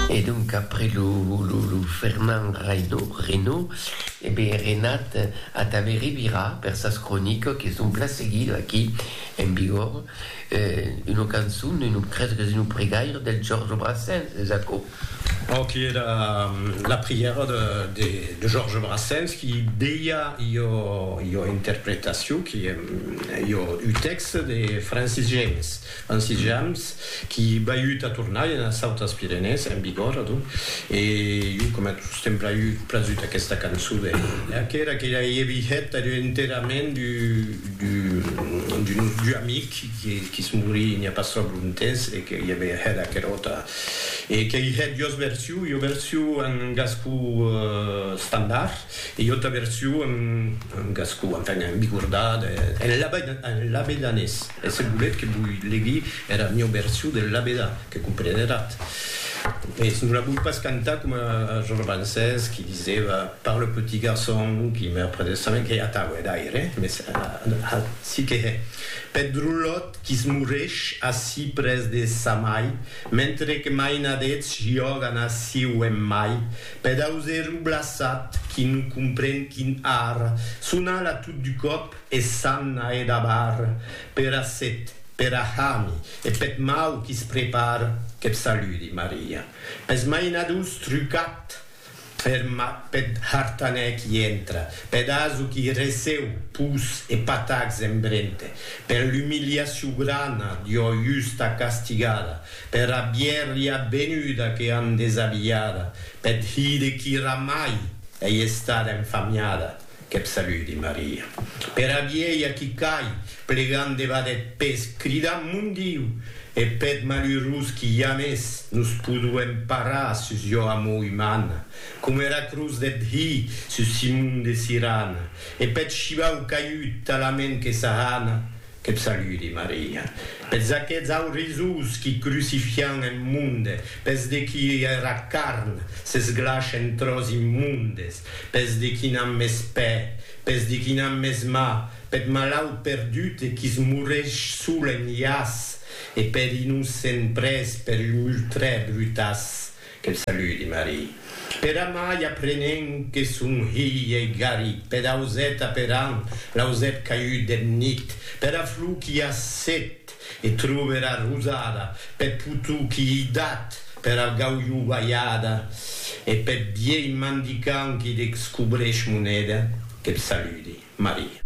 E donc après lo Fernand Reynaud, e ben Renat Atave revirà per sas cronicas que son plan seguidas aquí en Bigòrre, una cançon, un crese que es un pregaire del Georges Brassens, es aquò? Bon, qui era la prièra de Georges Brassens qui deia ua interpretacion, qui ua un tèxte de Francis James. En sitjams qui baiut a tornar ena Sautas Pirenèes, en Bigòrre, adonc, e jo coma tos t'èm braiut prasut aquesta cançon de Lea, qu'era que ja ei vihet ath enterrament d'un nostre amic qui's morí n'i a pas tròp lontemps e que i avè hèt aquera auta e qu'ei hèt jos version, ua version en gascon estandard e ua auta version en gascon, enfin, en bigordà, en labedanés. E se voletz que voi legui era mieu version del labedà, que compreneratz, mès non la voi pas cantar coma es romancers qui disèva par le petit garçon qui meurt près de sa main, qu'ei atau, hè, d'aire, mès ací que hè, peth drolòt qui se moresh ací près de sa mai, mentre que mainadets jògan ací o en mai, peth auserou blaçat qui non compren quin arr. Sonal a tot du còp. E s'an a e dabar pera set, pera hami e peth mau qui's prepar, qu'eth saludi, Maria. Pes mainadors trucat er mat peth hartanèr qui entra, peth aso qui receu pus e patacs en brente, per l'umiliacion grana d'ua justa castigada, pera bièrria benuda que an desabilhada, peth hide qui ramai ei estada enfamiada, Qu'eb saludi Maria. Pera vielha qui cai, plegant debat eth pes, cridant Mon Diu! E peth malurós qui jamès nos poduem parar sus jo amor umana, coma era cruz deth Hi sus Simon de Sirana, e peth shivau caiut talament que s'ahana, qu'eb saludi Maria. Pes aqueths aurisós qui crucifian eth monde, pes de qui era carn s'esglash en tròç immondes, Pes de qui n'an mès pè, pes de qui n'an mès mà, peth malaut perdut e qui's moresh sol en lhàs, e peth innocent près per un ultrè brutàs, que'l saludi Marie. Per amai aprenent que son hilh ei garit, peth auset aperant l'ausèp caiut deth nit, pera flor qui a set, E trove era rosada peth potou qui ei dat per al gaulhou balhada e peth vielh mandicant qui deccobrèsh moneda. Que'b saludi, Maria.